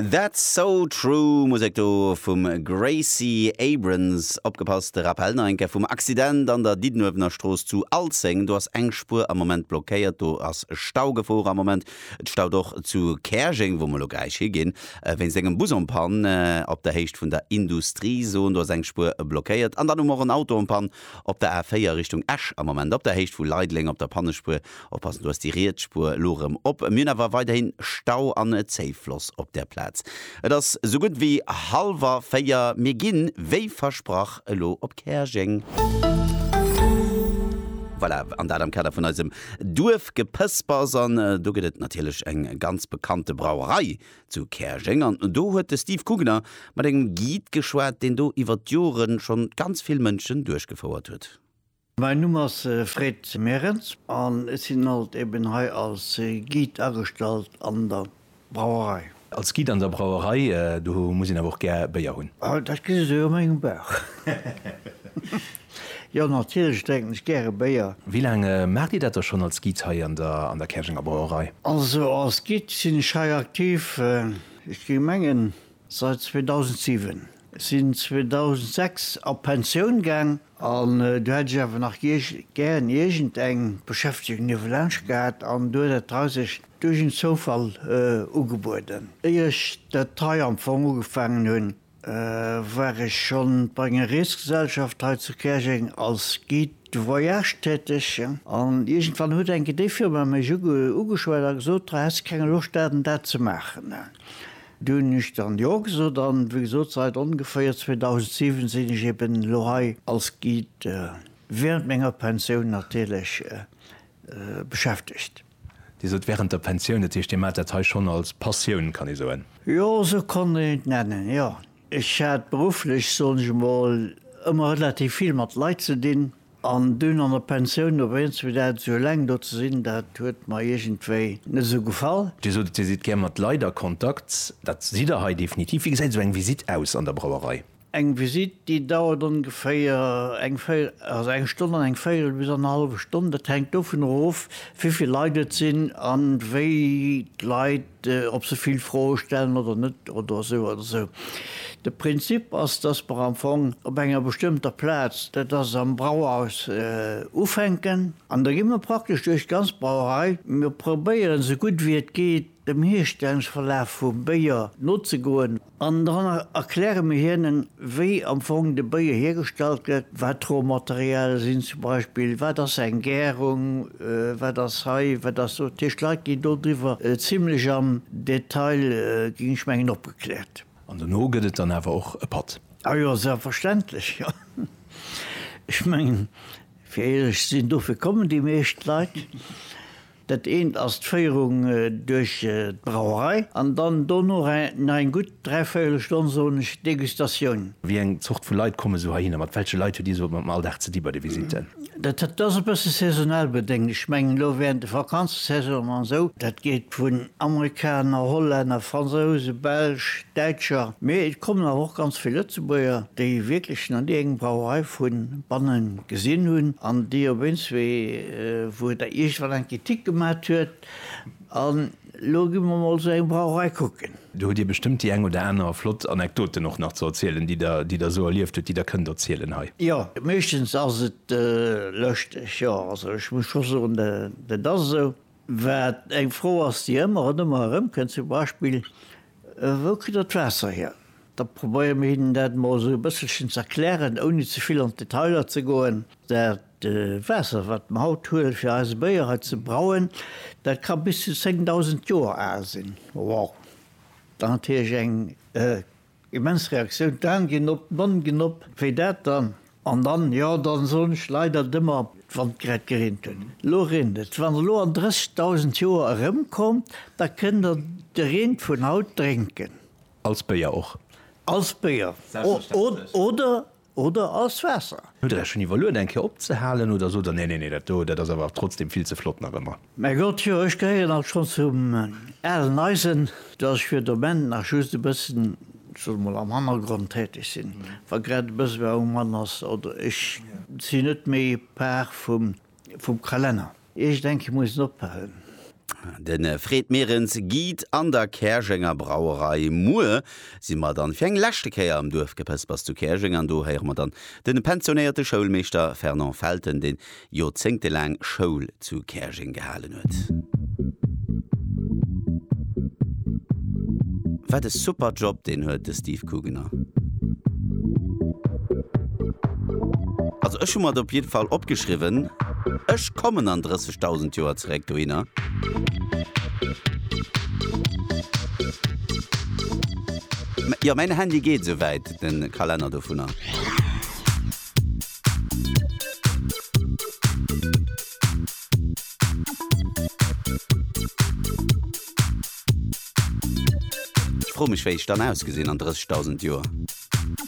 That's so true, Musek do vum Gracie Abrams. Opgepasst, de Rappel nach eng Kéier vum Accident an der Diddenuewener Strooss zu Alzeng. Do ass eng Spuer am Moment blockéiert, do ass Staugefor am Moment. Et staut och zu Käerjeng, wou mer elo gläich higinn, wéinst engem Bus en panne op der Héicht vun der Industriezon. Do ass eng Spuer blockéiert. An dann hu mer och en Auto en panne op der A4 Richtung Esch am Moment op der Héicht vu Leideleng op der Pannespuer. Oppassen, do ass déi riets Spuer elo erëm op. Mir hunn awer weiderhin Stau an Zéifloss op där Plaz. Et ass sou gutt wéi hallwer véier. Mir ginn, wéi versprach, elo op Käerjeng. Voilà, an dat am Kader vun eisem Duerfgepëspers. An do gëtt et natierlech eng ganz bekannte Brauerei zu Käerjeng. An do huet de Steve Kugener mat engem Guide geschwat, deen do iwwer d'Joren schonn ganz vill Mënschen duerchgefouert huet. Mäin Numm ass Fred Merens an ech sinn alt eben hei als Guide agestallt an der Brauerei. Als Guide an der Brauerei, do muss een awer och gär Béier hunn? Ah, dat gesi sou a mengem Bauch. Jo, natierlech drénken ech gäre Béier. Wéi laang maacht Dir dat da schonn als Guide hei an der Käerjenger Brauerei? Also als Guide sinn ech hei aktiv, ech géing mengen, Seit 2007. Sinn 2006 a Pensioun gaang an do hätt ech awer nach gären iergend eng Beschäftegung niewelaanscht gehat an do huet dat hei sech duerch en Zoufall ugebueden. Éier ech dat hei am Fong ugefaangen hunn, war ech schonn bei enger Reesgesellschaft hei zu Käerjeng als Guide de voyage täteg an iergendwann huet enke déi Firma mech ugeschwat a gesot, Häss de keng Loscht dat an dat ze maachen? Do hunn ech dann Jo gesot an wéi gesot seit ongeféier 2007 sinn ech eben elo hei als Guide während menger Pensioun natierlech beschäftegt. Dir sot während der Pensioun, dat heescht Dir maacht dat hei schonn als Passioun, kann ee soen? Jo, esou kann een et nennen, jo. Ech hat berufflech, soen ech emol, ëmmer relativ vill mat Leit ze dinn. An dunn an der Pensioun op eens fir dat esou eleng do ze sinn, dat huet mer iergendwéi net esou gefall. Dir sot et, Dir sidd gär mat Leit a Kontakt. Dat sidd Der hei definitiv. Wéi gesäit esou eng Visitt aus an der Brauerei? Eng Visitt, déi dauert ongeféier eng véi, also eng Stonn an eng véierel bis annerhallwe Stonn. Dat hänkt dovunner of, wéi vill Leit et sinn an wéi d'Leit, ob se vill Froe stellen oder net oder esou oder esou. De Prinzip ass, dass mer am Fong op enger bestëmmter Plaz, dat ass am Brauhaus, ufänken an da gi mer praktesch duerch d'ganz Brauerei. Mir probéieren, esou gutt wéi et geet, dem Hierstellungsverlaf vum Béier nozegoen. An dann erkläre mir hinnen, wéi am Fong de Beer hiergestallt gëtt, wat d'Rohmaterialie sinn zum Beispill, wat ass eng Gärung, wat ass hei, wat ass do. Dat heescht, d'Leit ginn dodriwwer zimlech am Detail, ginn ech mengen, opgekläert. An dono gëtt et dann awer och e Patt? A jo, selbstverständlech, jo. Ech mengen, fir éierlech ze sinn, dofir kommen déi meescht Leit. Dat eent ass d'Féierung duerch d'Brauerei an dann dono nach eng gutt dräivéiele Stonn, soen ech, Degustatioun. Wéi eng Zort vu Leit komme sou heihinner? Mat welche Leit huet Dir sou am Alldag ze di bei de Visitten? Dat ass e bësse saisonal bedéngt. Ech mengen elo während de Vakanzesaisonen an esou, dat geet vun Amerikaner, Hollänner, Fransouse, Belsch, Däitscher, mee et kommen awer och ganz vill Lëtzebuerger, déi wierklech nach ni eng Brauerei vu banne gesinn hunn an déi op eens wéi, wou Der iergendwann eng Kritik gemat huet, an elo gi mer emol sou eng Brauerei kucken. Do hutt Dir bestëmmt déi eng oder aner flott Anekdoten och nach ze erzielen, déi Der, déi Der esou erlieft hutt, déi Der kënnt erzielen hei. Jo, meeschtens ass et lëschteg, jo. Also ech muss scho soen, dat ass esou. Wat eng Fro ass, déi ëmmer an ëmmer erëmkënnt, zum Beispill, Wou kritt der d'Waasser hier? Da probéiere mir hinnen dat emol esou e bësselchen ze erklären, ouni ze vill an d'Detailer ze goen. Dat Waasser, wat mer haut huelen, fir eise Béier hei ze brauen, dat ka bis zu 10.000 Joer al sinn. Wow! Dat ass natierlech eng immens Reaktioun. D'Aan ginn op, d'Monn ginn op. Wéi dat dann An dann, jo, dann soen ech leider dëmmer, wann et grad gereent huet, elo reent et. Wann der elo an 30.000 Joer erëmkommt, da kënnt der de Reen vun haut drénken. Als Béier och. Als Béier oder, oder als Waasser. Hutt der Iech schonn iwwerluet eng Kéier opzehalen oder sot der, nee, nee, nee, dat do, dat ass awer trotzdem vill ze flott nach ëmmer? Mä Gott, jo, ech gehéieren alt schonn zum alen Eisen, datt ech fir de Moment nach just e bëssen, ech soe mol, am Hannergrond täteg sinn, wa grad e bësse war um Mann ass, oder ech sinn net méi Par vum Kalenner. Ech denke, ech muss en ophalen. De Fred Merens geet an der Käerjenger Brauerei. Muer si mer dann fir eng leschte Kéier am Duerfgepëspers zu Käerjeng an do héiere mer dann de pensionéierte Schoulmeeschter Fernand Felten, dee joerzéngtelaang Schoul zu Käerjeng gehalen huet. Wat e super Job deen huet de Steve Kugener. Also ech hu mer et op jidde Fall opgeschriwwen, ech kommen an 30.000 Joer zeréck dohinner. Jo mäin Handy geet esou wäit den Kalenner dovunner. Ech froe mech wéi ech dann ausgesinn an 30.000 Joer.